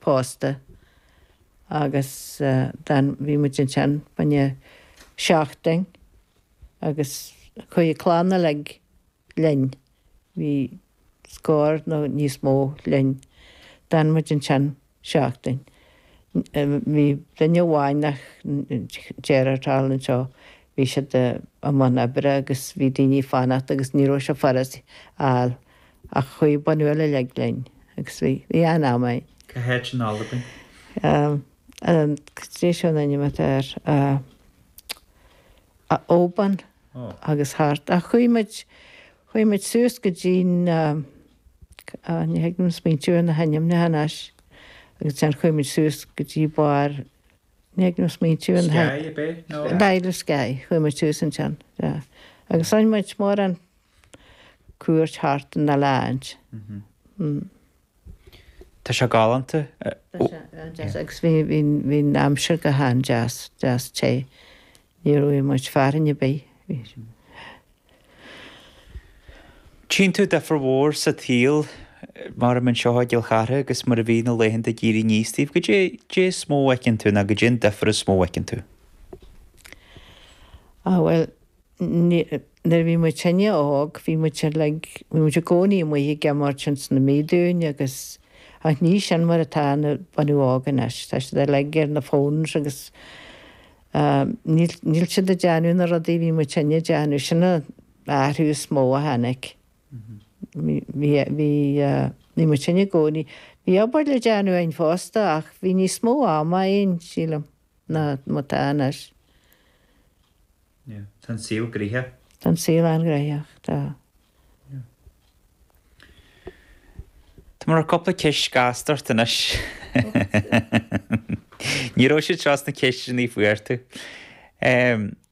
pósta agus d'fhan, bhí muid ansin fá choinne seachtain agus chuaigh an chlann uilig linn, bhí scór nó níos mó linn, d'fhan muid ansin seachtain. Bhí duine amháin nach déarfadh thall anseo, bhí siad i mbun oibre agus bhí daoine ag fanacht agus ní raibh sé furast a fháil. Ach chuaigh bunús uilig linn agus bhí an-am againn. Cá háit in Albain? Caidé seo an t-ainm atá ar Oban agus thart. Ach chuaigh muid, chuaigh muid suas go dtí na, ní thig liom smaointiú ar na hainmneacha anois. Agus ansin chuaigh muid suas go dtí barr, ní thig liom smaointiú ar na hainm. Skye a b'é? Nó? B'fhéidir Skye. Chuaigh muid suas ansin, yeah. Agus roinn muid mórán. cuairt thart ann le feiceáilt. Tá sé galánta. Tá sé an-deas agus bhí'n aimsir go han-deas, deas té. Ní raibh muid fearthainn a' bith. Tchíonn tú difir mhór sa tsaol mar a mbíonn anseo i gCill Chartha agus mar a bhí na laethanta ag éirí 'níos daoibh. Goidé is mó a fheiceann tú ná goidé an difir is mó a fheiceann tú? Á bhuel, Nuair a bhí muid sinne óg bhí like, bhí muid i gcónaí amuigh ag imirt ins na míodúin agus, ach ní sin mar atá an bunadh óg anois, tá siad ar like ar na phones agus níl, níl siad ag déanamh na rudaí a bhí muid sinne ag déanamh, sin an t-athrú is mó a tháinig. Bhí, bhí, bhí muid sinne i gcónaí, bhí obair le déanamh againn fosta ach bhí níos mó ama againn sílim. ná mar atá anois. Yeah. Tá an saol gnoitheach. Tá an saol an-ghnoitheach, tá. Yeah. Tá, maram, cupla ceist ghasta ort anois. Ní raibh siad seo sna ceisteannaí a fuair tú. Em.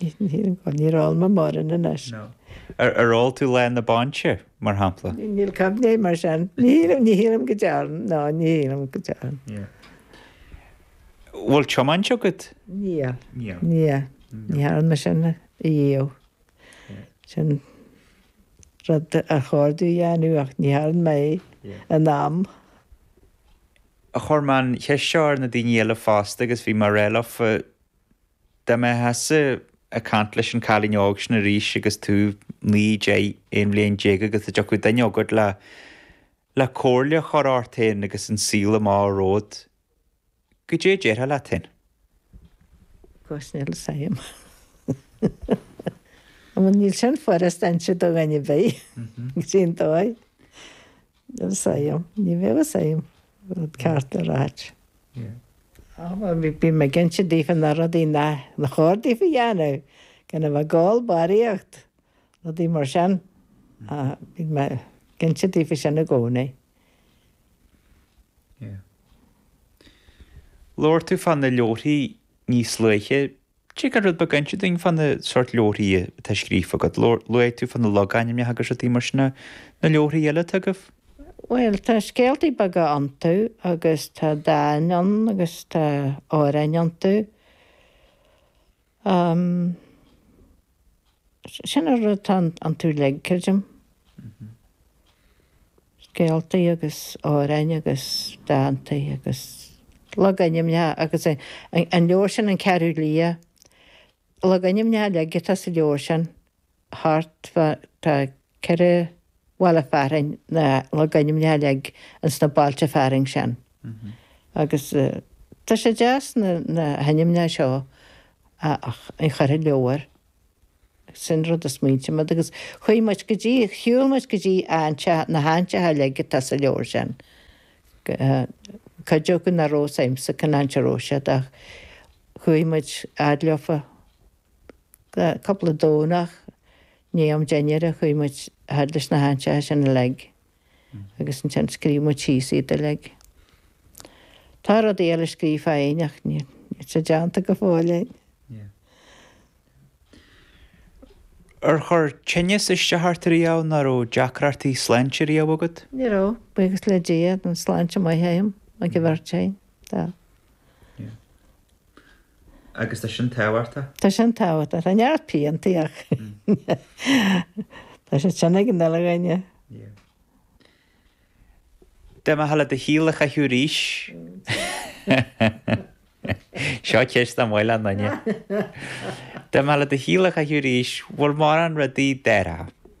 Ní raibh, maram anois. Ar ól tú lá na bainse, mar shampla? Níl cab dé mar sin. Ní shílim go dearn, ná ní shílim go dearn. Bhfuil tiomáint agat? Níl. Níl. Ní dhearn mé sin ariamh. Sin rud ar chóir domh a dhéanamh ach ní dhearn mé é in am. Chuir mé an cheist seo ar na daoine eile fosta agus bhí mé ag ráit leofa Dá mbeitheása ag cainnt leis an cailín óg sin arís agus tú naoi, deich, aon bhliain déag agus dá dtiocfadh duine a thabhairt le, le comhairle a chur ort fhéin agus an saoghal a bheadh romhat, goidé a déarfá leat fhéin? Cosnil Sam. An bhfuil níl sin furust do dhuine ar bith, go dtí an dóigh. Ní raibh fhios agam. Ní bheadh fhios agam rud ceart le ráit. Bhí mé ag inse daofa na rudaí nár chóir daofa dhéanamh, gan a bheith ag ól barraíocht, rudaí mar sin. Bhí mé ag inse daofa sin i gcónaí. Labhair tú fá na leabharthaí níos luaithe. Dtig leat rud beag a inse dúinn fá na seort leabharthaí atá scríofa agat. Luaigh tú fá na logainmneacha agus rudaí mar sin. Na leabharthaí eile atá agaibh? Bhuel, tá scéaltaí beaga iontu agus tá dán ann agus tá amhráin iontu. Sin an rud atá iontu uilig, creidim. scéaltaí agus amhráin agus dántaí agus logainmneacha agus an leabhar sin An Ceathrú Liath logainmneacha uilig atá sa leabhar sin thart fá tá ceithre bhaile fearainn na logainmneacha uilig ins na bailte fearainn sin agus tá sé deas na na hainmneacha seo a chur i leabhar. Sin rud a smaointigh muid agus chuaigh muid go dtí, shiúil muid go dtí na háiteacha uilig atá sa leabhar sin. Cuid acu nach raibh fhios agamsa cén áit a raibh siad ach chuaigh muid fhad leofa. Cúpla Domhnach, i ndiaidh am dinnéara ach chuaigh muid fhad leis na háiteacha sin uilig. agus ansin scríobh muid síos iad uilig. Tá rudaí eile scríofa againn ach níl sé déanta go fóill againn. Ar chuir tinneas isteach ort riamh nó an raibh deacrachtaí sláinte riamh agat? Ní raibh, buíochas le Dia, tá an sláinte maith agam, ag an bheirt againn. Tá. Agus tá sin tábhachtach. Tá sin tábhachtach. Tá neart piantaí ach tá siad sin ag an uile dhuine. Yeah. Dá mbeifeá le do shaol a chaitheamh arís, seo ceist nach maith le aon duine, dá mbeifeá le do shaol a chaitheamh arís, bhfuil mórán rudaí a déarfá.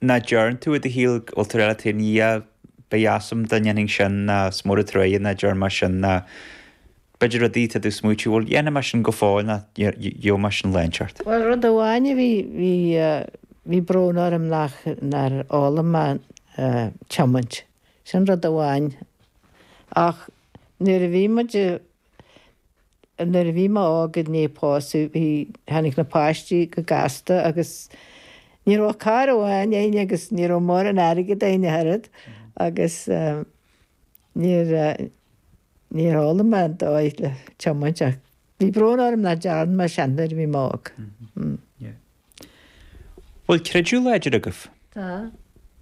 Nó deireann tú, i do shaol, go bhfuil tú ar eile taobh na dhiaidh, ba dheas liom dá ndéanfainn sin, nó is mór an truaighe nach dearn mé sin, nó b'fhéidir rudaí atá tú ag smaointiú, bhuel, dhéanfaidh mé sin go fóill nó gheobhaidh mé sin lá inteacht. Bhuel, rud amháin a bhí, bhí, bhí brón orm nach, nár fhoghlaim mé tiomáint. Sin rud amháin. Ach nuair a bhí muid, nuair a bhí mé óg i ndiaidh pósadh bhí, tháinig na páistí go gasta agus ní raibh ach carr amháin a'inn agus ní raibh mórán airgead a'inn a hoiread agus níor, níor fhoghlaim mé an dóigh le tiomáint ach bhí brón orm nach dearn mé sin nuair a bhí mé óg. Yeah. Bhfuil creideamh láidir agaibh? Tá.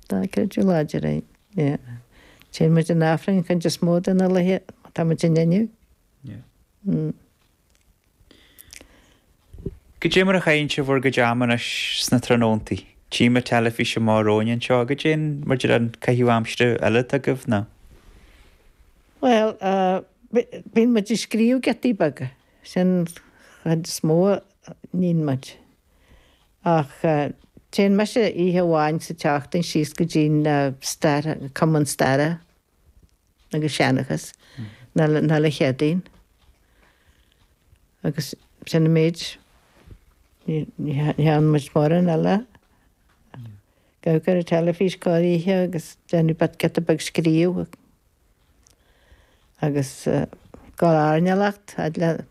Tá creideamh láidir a'inn. Yeah. Téann muid chun Aifrinn an chuid is mó de na laetha, tá muid ann inniu. Go dté mar a chaitheann sibh bhur gcuid ama anois sna tráthnóntaí. Tímid an teilifís mar atá ann anseo. Go dté maidir le caitheamh aimsire eile atá agaibh nó? Bhuel, bíonn muid ag scríobh giotaí beaga. Sin an chuid is mó a níonn muid. Ach téann mise oíche amháin sa tseachtain síos go dtí'n Stair, Cumann Staire. agus seanchas oíche Chéadaoin agus sin an méid. Ní ní theann muid mórán eile. Ag amharc ar an teilifís corroíche agus ag déanamh giota beag scríobh agus gabháil ag airneál a fhad leis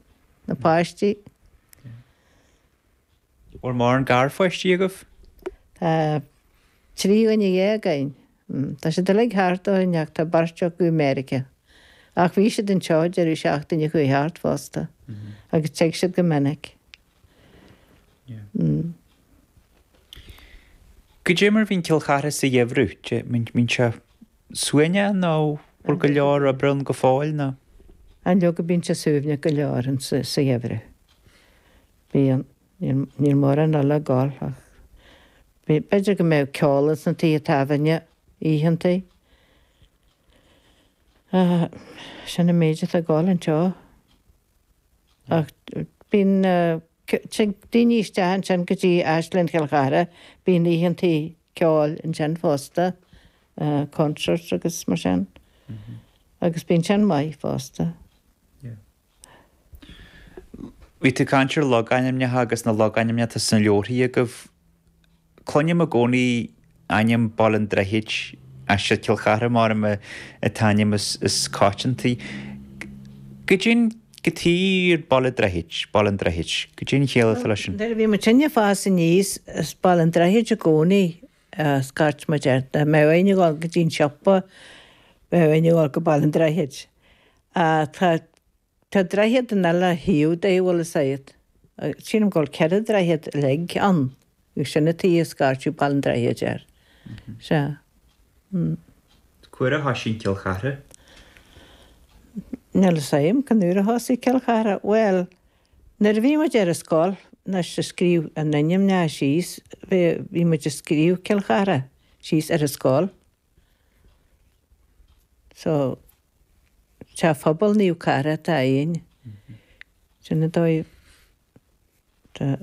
na páistí. Bhfuil mórán garpháistí agaibh? Tá trí dhuine dhéag againn. Tá siad uilig thart orainn ach tá beirt acu i Meiriceá. Ach bhí siad anseo deireadh seachtaine a chuaigh thart fosta agus tig siad go minic. Yeah. Go dté mar bhíonn Cill Chartha sa gheimhreadh, dé, bíonn sé suaimhneach nó bhfuil go leor oibre ann go fóill nó? Á leoga bíonn sé suaimhneach go leor sa gheimhreadh. Bíonn. Níl mórán eile ag gol ach b'fhéidir go mbeadh ceol ins na tithe tábhairne oícheanta. Sin an méid atá ag gol anseo. Ach bíonn daoiní isteach ansin go dtí Áislann Chill Chartha, bíonn oícheanta ceoil ansin fosta, concerts agus mar sin. Agus bíonn sin maith fosta. Yeah. Bhí tú ag caint ar logainmneacha agus na logainmneacha atá sna leabharthaí agaibh. Cluinim i gcónaí ainm Baile an Droichid, ach is é Cill Chartha mar an t-ainm is coitianta. Goidé, goidé Baile Droichid, Baile an Droichid. Goidé an chiall atá leis sin. Nuair a bhí muidinne ag fás aníos, is Baile an Droichid i gcónaí a scairt muid air. Dá mbeadh muidinne ag dul go dtí an siopa, bheadh muidinne ag dul go Baile an Droichid. Tá, tá, tá droichead in uile thaobh de bhuel is é, sílim go bhfuil ceithre droichead uilig ann agus sin an tuighe a scairtear Baile an Droichid air. Sea. Mm. Cá huair a thoisigh Cill Chartha? Níl fhios a'm cén uair a thosaigh Cill Chartha. Bhuel, nuair a bhí muid ar an scoil, anois a scríobh na n-ainmneacha síos, bhí, bhí muid a scríobh Cill Chartha síos ar an scoil. So. Sa phobal Naomh Cartha atá ann. Sin an dóigh tá.